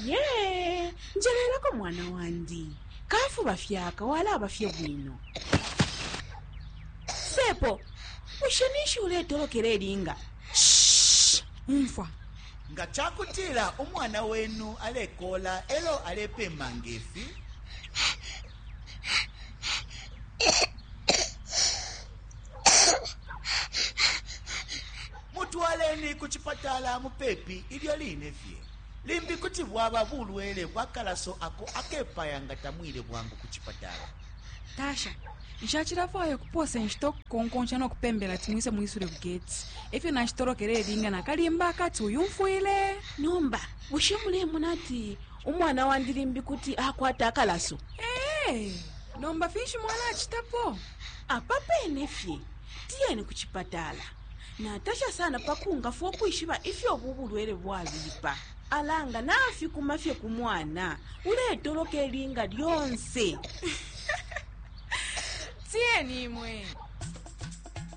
ye njelelako mwana wandi kafuba fyaka walaba fye bwino sepo bushe ninshi uletolokela elinga umfwa nga ca kutila umwana wenu alekola elo alepema ngefi Mutwaleni ku cipatala mupepi ilyo line fye. Limbi kuti bwaba bulwele bwa kalaso ako akepaya nga tamwile bwangu ku cipatala. Tasha, Nshacilafwaya ukupoosa inshita ukukukonkonsha no kupembela ati mwise mwisule ku geti. E fyo nashitolokela ilinga na kalimba akati uyumfwile! Nomba bushe mulemona ati Umwana wandi limbi kuti akwata akalaso. Ee, nomba finshi mwalacitapo? Apa pene fye, tiyeni ku cipatala. Natasha sana pa kungafwa ukwishiba ifyo ubu bulwele bwabipa. Ala nga nafikuma fye ku mwana, uletoloka ilinga lyonse. Tiyeni imwe.